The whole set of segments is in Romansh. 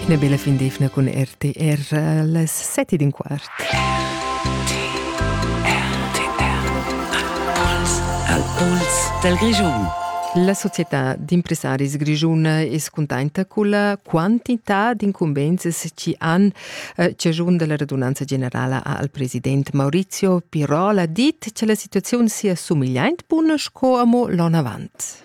Ina bella fin d'efna cun RTR las sette ed in quart. Al puls del Grischun. La società d'impressaris grischuna es cuntenta culla quantità d'incumbenzas chi han eh, ciagiun dalla radunanza generala al president Maurizio Pirola dit cha la situaziun sia sumigliaint buna sco amo l'on avant.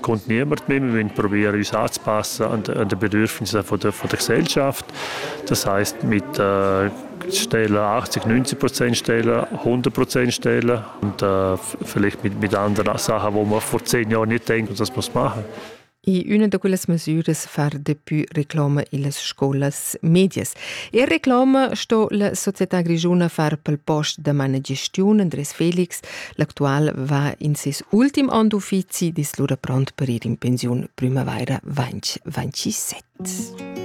Contgnebert memia vegn provia regisads passa anta da bedürfnisa von der, von der Gesellschaft. Das heißt, mit äh, Stelle 80, 90 Prozent Stelle, 100 Prozent Stelle und äh, vielleicht mit, mit anderen Sachen, wo man vor zehn Jahren nicht denkt, dass man es machen. In una da quelles mesüras far depui reclama illas scolas medias. E reclama sto la società grigiuna far pel post da mana gestiun Andres Felix L'actual va in ses ultim onn d'uffizi, dis lura pront per ir in pensiun primavaira 2027.